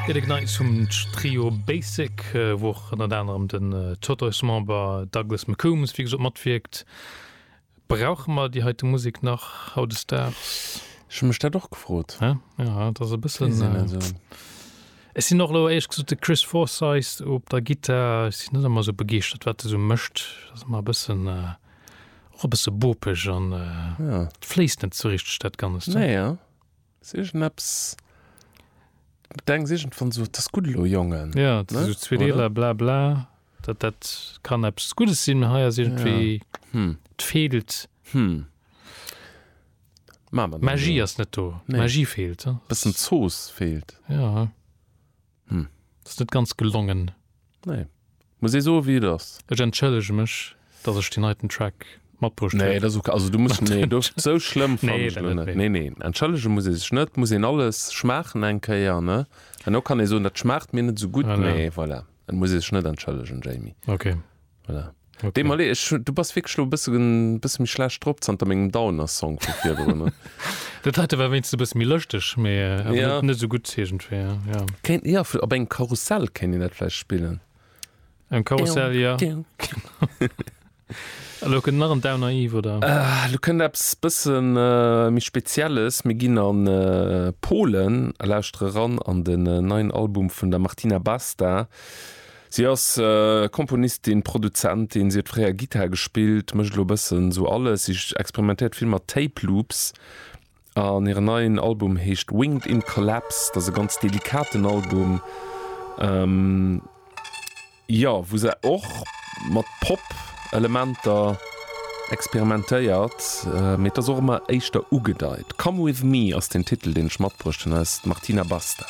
Fir de Gneis hum d'Trio Basic, wou och ënnert anerem den Totoys-Member Douglas McCombs wéi gesot matwierkt. Brauche mer déi heite Musek nach hautdesdaags? Ech hu mech dat och gefrot. Hä? Jo, et ass e bëssen. Weess een net esou. Ech sinn och elo éierlech gesot de Chris Forsyth op der Gittar, ech sinn net ëmmer esou begeeschtert wat e sou mécht. Et ass mer e bëssen, och e bësse bopeg an et fléisst net sou richteg dat Ganzt. Naja. Ass iergendepps, d'Engs iergendwann sot, Ass gutt elo, Jongen. Ja, et si sou zwee Deeler, bla bla, dat dat kann eppes Guddes sinn, hei ass iergendwéi, et feelt. D'Magie ass net do, d'Magie feelt. Bëssen Zooss feelt. Hm. Dat ass net ganz gelongen. Nee. Muss ee soe wéi et ass. Ech entschëllege mech, datt ech deen heiten Track matbruecht huet. Nee, dat ass ok. Also du muss, nee, do, sou schlëmm fannen ech lo net. Nee, nee, entschëllege muss ee sech net. Muss een alles schmaachen eng Kéier, ne? An och kann ee soen, dat schmaacht mir net sou gutt, mee voilà. Et muss ee sech net entschëllegen, Jamie. Ok. Voilà. Okay. Dem Malé, ich, du bass wirklich lo bësse bësse méi schlecht drop zanter mengem Downer-Song vu virdrun. ne? Dat heite war wéinst e bësse méi lëschteg, mee äh, awer Ja. net, net sou gutt iergendwéi. Ja. Kéint, ja, op engem Karussell kéint een dat vläicht spillen. Am Karussell, ja. Elo kënnt nach en Downer Eve, oder? Äh, lo kënnt eppes bëssen äh, méi Spezielles. Mir ginn an äh, Polen a lauschtere ran an den äh, neien Album vun der Martina Basta. Si ass Komponistin, Produzentin, si huet fréier Gittar gespillt, mécht elo e bëssen esou alles. Si experimentéiert vill mat Tape Loops an hiren neien Album heescht Winged in Collapse. Dat ass e ganz delikaten Album, jo, wou se och mat Pop-Elementer experimentéiert, mee et ass och ëmmer éischter ugedeit. Come with me ass den Titel, deen ech matbruecht hunn, eis Martina Basta.